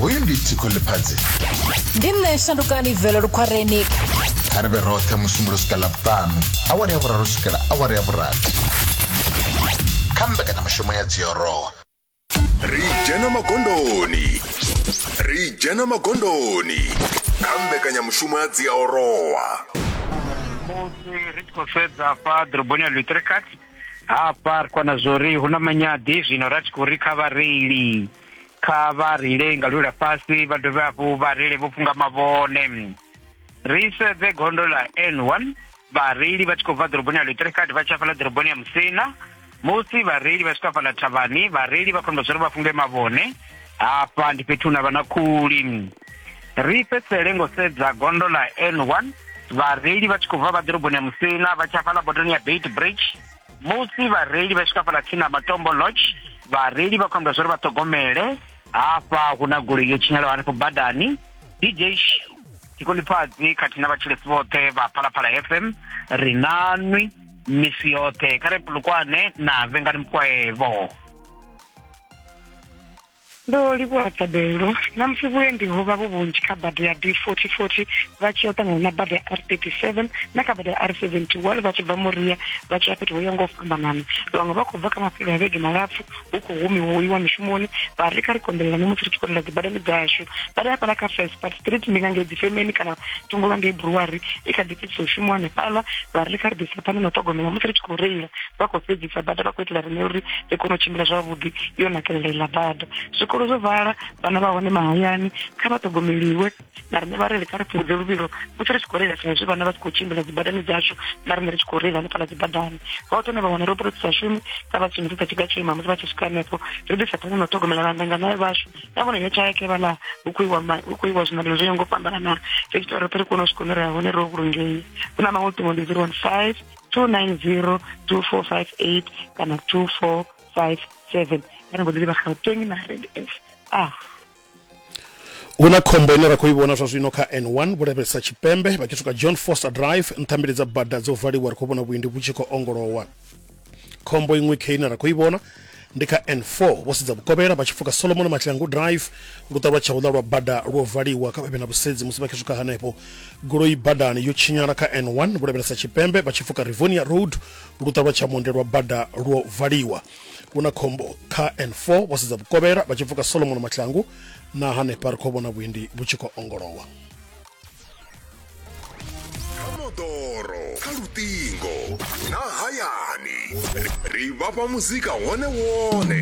hoyu ndi tshiko ḽifhadzi ndi nṋe shandukani velo lukhwareni kha ri vhe roṱhe musumbulo swika ḽavhuṱanu awara ya vhuraru swikela awara ya vhurathi kha mbekanyamushumo ya dziorowa ri dzhena magondoni ri dzhena magondoni kha mbekanyamushumo ya dziaorowa musi ri tshi khou sedza fha ḓoroboni ya lutricat hafha ri kwana zwori hu na manyadi zwino ra tshi khou ri kha vhareili kha vha reile nga lula fhasi vha dovhe hafhu vha reile vho funga mavhone ri sedze gondo ḽa n one vhareili vha tshi khou bva ḓoroboni ya lutrekad vha tshi afhaḽa ḓoroboni ya musina musi vhareili vha swika afhaḽa thavhani vhareili vha khou amba zwori vha funge mavhone hafha ndi fhethu hune ha vha na khuli ri fhedzisele ngo sedza gondo ḽa n1 vhareili vha tshi khou bva vha ḓoroboni ya musina vha tsha fhaḽa botoni ya bait bridge musi vhareili vha swika fhaḽa tsini na matombo lodge vhareili vha khou amba zwa uri vha ṱhogomele hafha hu na goloi yo tshinyalaho hanefho badani dj tshikolifhadzi khathihi na vhatshilesi vhoṱhe vha phalaphala fm ri na nwi misi yoṱhe kha re pulukwane na vhengani mukwaevo Ndo livhuwa thabelo. Na musi vhuendi ho vha vhu vhunzhi kha bada ya D4040 vha tshi ya ṱangana na bada ya R37 na kha bada ya R71 vha tshi bva Moria vha tshi ya fhethu ho ya nga u fhambanana. Vhaṅwe vha khou bva kha mafhelo a vhege malapfu hu khou humiwa u iwa mishumoni vha ri kha ri konḓelelane musi ri tshi khou lila dzibadani dzashu. Bada ya fhaḽa kha Felspad Street ndi nga ngei dzifemeni kana thungo lwa ngei Brewery i kha ḓi fhedzisa u shumiwa hanefhaḽa vha ri kha ri ḓi pane na ṱhogomelo musi ri tshi khou reila vha khou fhedzisa bada vha khou itela rine uri ri kone u tshimbila zwavhuḓi yo nakelela iḽa bada zwikolo zwo vala vhana vha hone mahayani kha vha ṱhogomeliwe na rine vhareili kha ri fhungudze luvhilo musi ri tshi khou reila sa izwi vhana vha tshi khou tshimbila dzibadani dzashu na rine ri tshi khou reila hanefhala dzibadani vha u tone vha wana roṱhe ri sa shumi kha vha shumisisa tshiga tsho ima musi vha tshi swika hanefho ri ḓisa phana na u ṱhogomela vhandanganayo vhashu ya vhona yo tshaeke vhala hu khou iwa hu khou iwa zwiṋamelo zwo ya ngo fhambanana ri tshi tori ri kone u swika hune ri ya hone ro vhulungei hu na maṅwe ṱhingo ndi zero one five two nine zero two four five eight kana two four five seven kana ngo ḓi livha gauteng na rand f ah hu na khombo ine ra khou i vhona zwa zwino kha n1 vhulavhelesa tshipembe vha tshi swika john foster drive nṱhambili dza bada dzo valiwa ri khou vhona vhuendi vhu tshi khou ongolowa khombo iṅwe khe ine ra khou i vhona ndi kha n4 vho sedza vhukovhela vha tshi pfuka solomon matlangu drive luṱa lwa tshauḽa lwa bada lwo valiwa kha vhavhe na vhusedzi musi vha tshi swika hanefho goloi badani yo tshinyala kha n1 vho lavhelesa tshipembe vha tshi pfuka rivonia road luṱa lwa tshamonde lwa bada lwo valiwa hu na khombo kha n4 vho sedza vhukovhela vha tshi pfuka solomon matlangu na hanefha ri khou vhona vhuendi vhu tshi khou ongolowa moḓoro kha luṱingo na hayani ri vhafha muzika wone wone